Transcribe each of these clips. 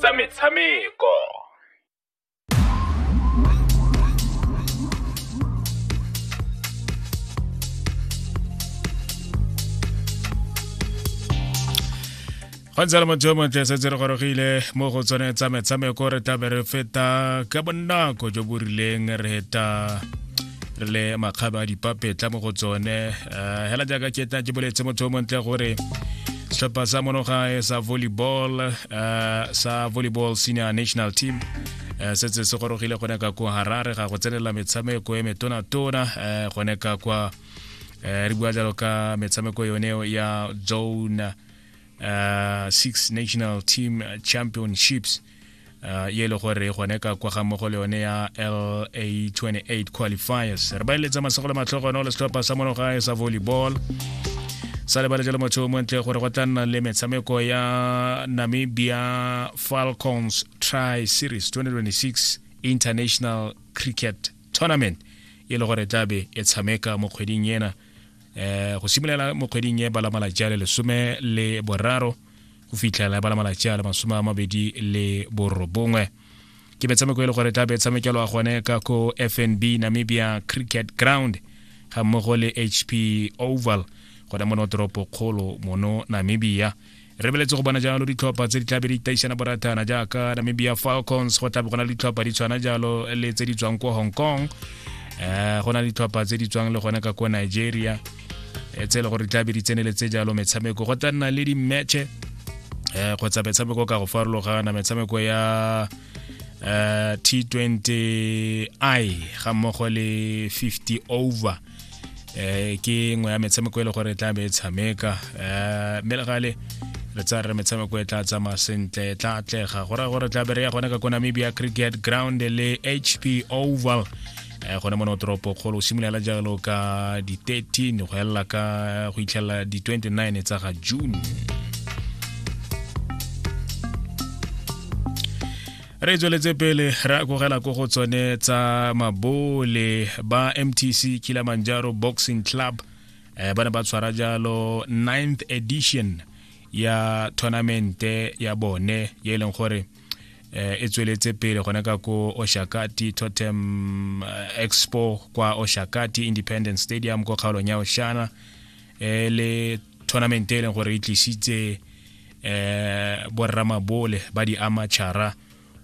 tsa metshameko go ntse le motho yo montle setse re gorogile mo go tsone tsa metshameko re tlabe re feta ka bonako jo bo rileng re heta re le makgaba a dipapetla mo go tsone eh, hela jaaka ke tla ke boletse motho o montle gore setlhopha sa monogae sa volleyball eh, sa volleyball senior national team Eh, se tse se gorogile gone ka kwa harare ga go tsenela metshameko e metonatona eh, gone ka kwa eh, re bua jalo ka metshameko yone ya zone 6 national team championships uh, ye e le gore gone ka kwa ga mmogo le yone ya la 28 qualifiers re ba eletsa masego le matlhogo one le setlhopha sa monogae sa volleyball sa lebale jalo motho o montle gore go tla nna le metshameko ya namibia falcons tri series 2026 international cricket tournament e le gore tlabe e tshameka mo kgweding ena um go simolola mo kgweding e balamala jale lesome le boraro go fitlhela e bala malatsi a le masome a mabedi le borobongwe ke metshameko e le gore tla be tshamekelwa gone ka ko fnb namibia cricket ground ga mmogo le hp oval gona mono toropo kgolo mono namibia re beletse go bona jalo ditlhopha tse di tlabe di taisana boratana jaaka namibia falcons go tlabe go na le ditlhopha di tshwana jalo le tse di tswang ko hong kong um go na le ditlhopha tse di tswang le gone ka ko nigeria e tse e le gore tla be di tseneletse jalo metshameko go tla nna le di-matche um kgotsa metshameko ka go farologana metshameko ya um t20 i ga mmogo le 50 over um ke nngwe ya metshameko e le gore e tla be e tshameka um mme le gale re tsa re metshameko e tla tsamaya sentle e tla atlega go raya gore tla be re ya gone ka ko namibia cricket ground le hp oval eh, gone mono toropo kgolo o simolola jalo ka di-13 go elela ka go itlhelela di-29 tsa ga june re tsweletse pele re akogela ko go tsone tsa mabole ba mtc kilamanjaro boxing club eh, ba ne ba tshwara jalo 9th edition ya tournamente ya bone ye e leng gore eh, e tsweletse pele gone ka ko oshakati totem eh, expo kwa oshakati independence stadium ko kgaolong ya oshana e le tournament e leng gore e tlisitse eh borramabole ba di amachara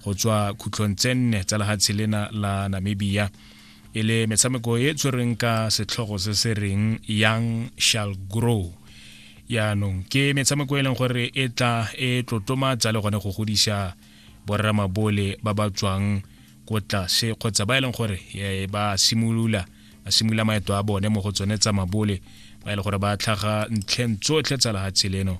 go tswa khutlong tse nne tsa lehatshe lena la namibia e le metshameko e tshwereng ka setlhogo se se reng young shall grow yaanong ke metshameko e leng gore e tla e tlotlomatsa le gone go godisa borramabole ba ba tswang ko tlase kgotsa ba e leng gore e, ba simolola ba simolola maeto a bone mo go tsone tsa mabole ba e leng gore ba tlhaga ntlheng tsotlhe tsa lehatshe leno